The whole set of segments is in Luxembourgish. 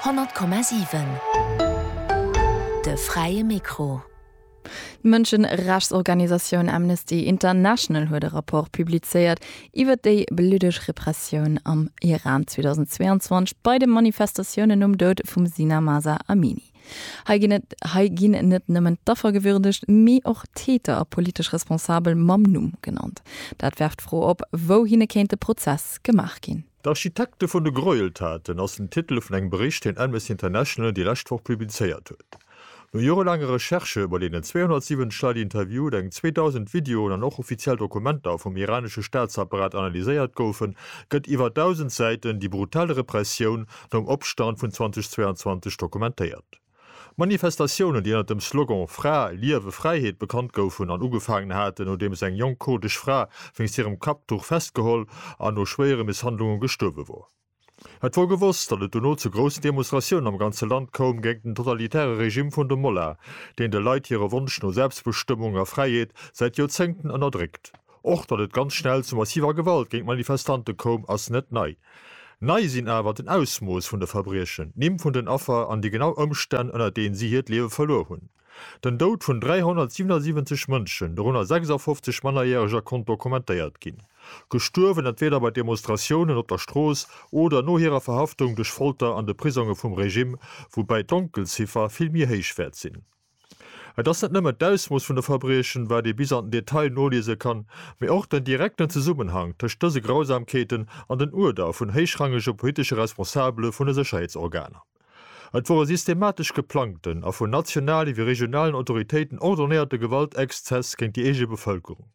100,7 De fräie Mikro. D'Mënscherechtsorganisatioun Amnesty International huet e Rapport publizéiert iwwer déi bluddeg Repressioun am Iran 2022 bei de Manifestatiounen nom Doud vum Sina Mahsa Amini. Hei ginn et hei ginn net nëmmen d'Affer gewürdegt, mee och d'Täter a politesch Responsabel mam Numm genannt. Dat werft d'Fro op, wouhinne kéint de Prozess gemaach ginn. D'Architekte vun de Gräueltaten ass den Titel vun engem Bericht, deen Amnesty International déi lescht Woch publizéiert huet. No jorelaange Recherchë, bei deenen 270 Leit interviewt, eng 2.000 Videoen an och offiziell Dokumenter vum iranesche Staatsapparat analyséiert goufen, gëtt iwwer 1.000 Säiten déi brutal Repressioun nom Opstand vun 2022 dokumentéiert. Manifestatiounen, déi ënnert dem Slogan Fra, Liewe, Fräiheet bekannt goufen an ugefaangen haten, nodeems eng jonk kurdesch Fra wéinst hirem Kapptuch festgeholl an no schwéiere Misshandlunge gestuerwe wor. Et wor gewosst, datt et dono zu groussen Demonstratiounen am ganze Land koum géint den totalitäre Regimm vun de Mollahn, deen de Leit hire Wonsch no Selbstbestëmmung a Fräiheet säit Joerzéngten ënnerdréckt. Och datt et ganz schnell zu massiver Gewalt géint Manifestante koum, ass net nei. Nei sinn awer den Ausmooss vun de Verbriechen, d'Nimm vun den Affer an déi genau Ëmstänn, ënner deenen si hiert Liewe verluer hunn. Den Doud vun 377 Mënschen, dorënner 56 Mannerjäreger, konnt dokumentéiert ginn. Gestuerwen, entweeder bei Demonstratiounen op der Strooss oder no hirer Verhaftung duerch Folter an de Prisonge vum Regimm, woubäi d'Donkelziffer vill méi héich wäert sinn. Et ass net nëmmen d'Ausmooss vun de Verbriechen, wat ee bis an den Detail noliese kann, mee och den direkten Zesummenhang tëscht dëse Grausamkeeten an den Uerder vun héichrangege politesche Responsabele vun de Sécherheetsorganer. Et wor e systematesch geplangten a vun nationale wéi regionalen Autoritéiten ordonéierte Gewaltexzess géint déi eege Bevëlkerung.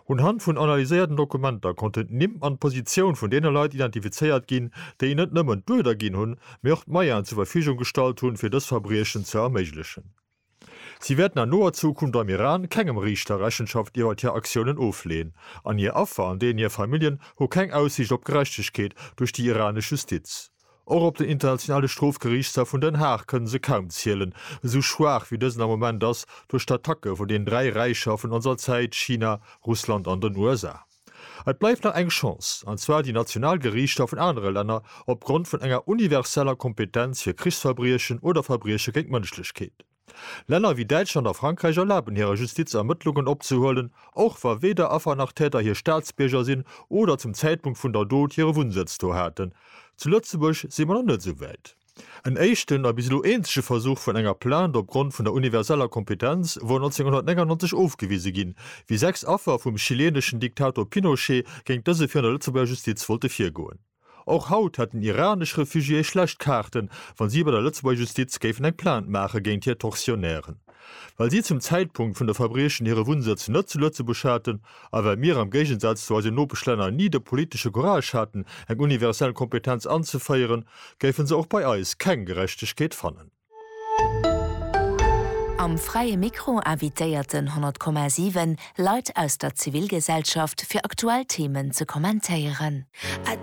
Un Hand vun analyséierten Dokumenter konnten d'Nimm an d'Positioun vun deene Leit identifizéiert ginn, déi net nëmmen d'Uerder ginn hunn, mee och d'Moyenen zur Verfügung gestallt hunn, fir dës Verbriechen ze erméiglechen. Si wäerten an noer Zukunft am Iran kengem Riichter Rechenschaft iwwert hir Aktiounen ofleeën, an hir Affer an deenen hir Familljen hu keng Aussiicht op Gerechtegkeet duerch déi iranesch Justiz. Och op den Internationale Strofgeriichtshaff vun Den Haag kënne se kaum zielen, esou schwaach wéi dësen am Moment ass duerch d'Attacke vun den dräi Räicher vun onser Zäit, China, Russland an den USA. Et bleift nach eng Chance, an zwar déi national Geriichter vun anere Länner opgrond vun enger universeller Kompetenz fir Krichsverbriechen oder Verbrieche géint d'Mënschlechkeet. Länner ewéi Däitschland a Frankräich erlaben hirer Justiz Ermëttlungen opzehuelen, och wa weder Affer nach Täter hir Staatsbierger sinn oder zum Zäitpunkt vun der Dot hire Wunnsëtz do haten. Zu Lëtzebuerg si mer nach net esou wäit. En éischten a bis elo eenzege Versuch vun enger Plainte opgrond vun der universeller Kompetenz wor 1999 ofgewise ginn, wéi sechs Affer vum chileeneschen Diktator Pinochet géint dëse virun der Lëtzebuerger Justiz wollte virgoen. Och haut hätten iranesch Refugiéë schlecht Kaarten, wa si bei der Lëtzebuerger Justiz géifen eng Plainte maache géint hir Tortionnairen, well si zum Zäitpunkt vun de Verbriechen hire Wunnsëtz net zu Lëtzebuerg haten a well mir am Géigensaz zu eisen Nopeschlänner ni de politesche Courage haten, eng universell Kompetenz anzeféieren, géife se och bei eis keng Gerechtegkeet fannen. Am Fräie Mikro invitéierten 100,7 Leit aus der Zivilgesellschaft fir aktuell Themen ze kommentéieren.